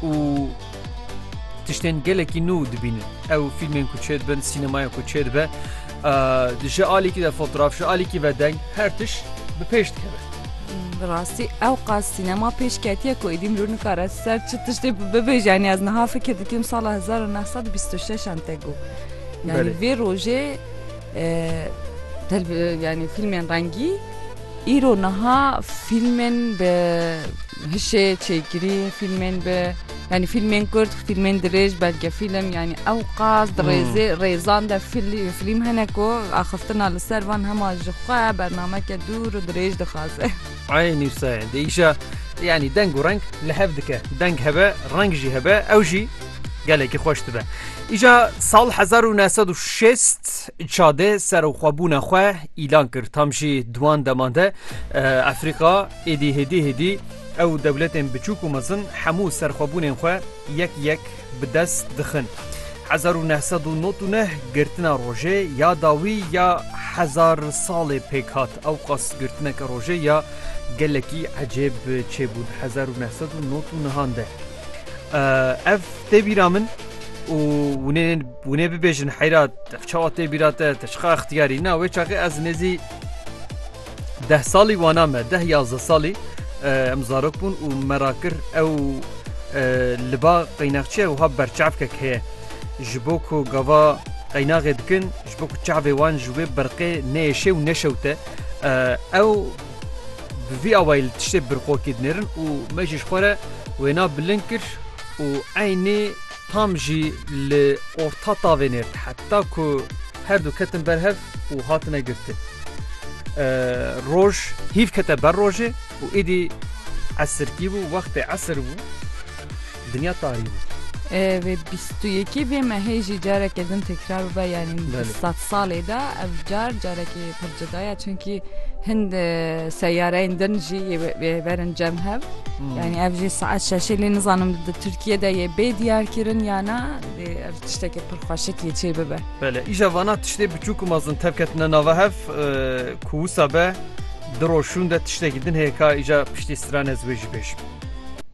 û tiştên gelekî nû dibînin. Ew fîlmên ku çêdibin, sînemaya ku çêdibe ji alîkî de fotoğraf ji alîkî ve deng her tiş bi pêş dikeve. Bi rastî ew qas sînema pêş ketiye ku êdî mirov nikare ser çi tiştê bibêje yanî ez niha fikir dikim sala 1926 an te got. Yani vê rojê Yanî fîlmên rengî. Îro niha fîlmên bi hişê çêkirî fîlmên bi yanî fîlmên kurd fîlmên dirêj belgefîlm yanî ew qas di rêzê rêzan de fîlm hene ku axiftina li ser van hema ji xwe bernameke dûr û dirêj dixwaze. Eynî wisa ye dê îşa yanî deng û reng li hev dike. Deng hebe reng jî hebe ew jî Gelekî xweş dibe. Îja sal 1960 çadê serxwebûna xwe îlan kir tam jî duwan deman de Efrîqa êdî hêdî hêdî ew dewletên biçûk û mezin hemû serxwebûnên xwe yek yek bi dest dixin. 1999 girtina rojê ya dawî ya hezar salê pêk hat ew qas girtineke rojê ya gelekî ecêb çêbûn 1999 de. Ev tê bîra min û hûnê bibêjin heyra ev çawa tê bîra te te çiqa ixtiyarî na wê çaxê ez nêzî deh salî wana me deh yazde salî em zarok bûn û me ra kir ew li ba qeynexçiye wiha berçavkek heye ji bo ku gava qeynaxê dikin ji bo ku çavê wan ji wê berqê nêşê û neşewte ew Bi vî awayî li tiştê birqokî dinêrin û me jî ji xwe re wêna bilind kir û eynî tam jî li orta tavê nêrd heta ku her du ketin ber hev û hatine girtin. Roj hîv kete ber rojê û êdî esirkî bû wextê esir bû. Dinya tarî bû. Vê bîst û yekê vê mehê jî careke din tekrar bibe yanî di sed salê de ev car carekê pir cida ye çunkî hin seyareyên din jî yê berin cem hev yanî ev jî saet şeşê lê nizanim di Tirkiye de yê bê diyarkirin ya na dê ev tiştekê pir xweşik yê çê bibe. Bele îja vana tiştê biçûk û mezin tevketine nava hev ku wisa be di roşûn de tiştekî din heye ka îja piştî strane ez wê jî bêjim.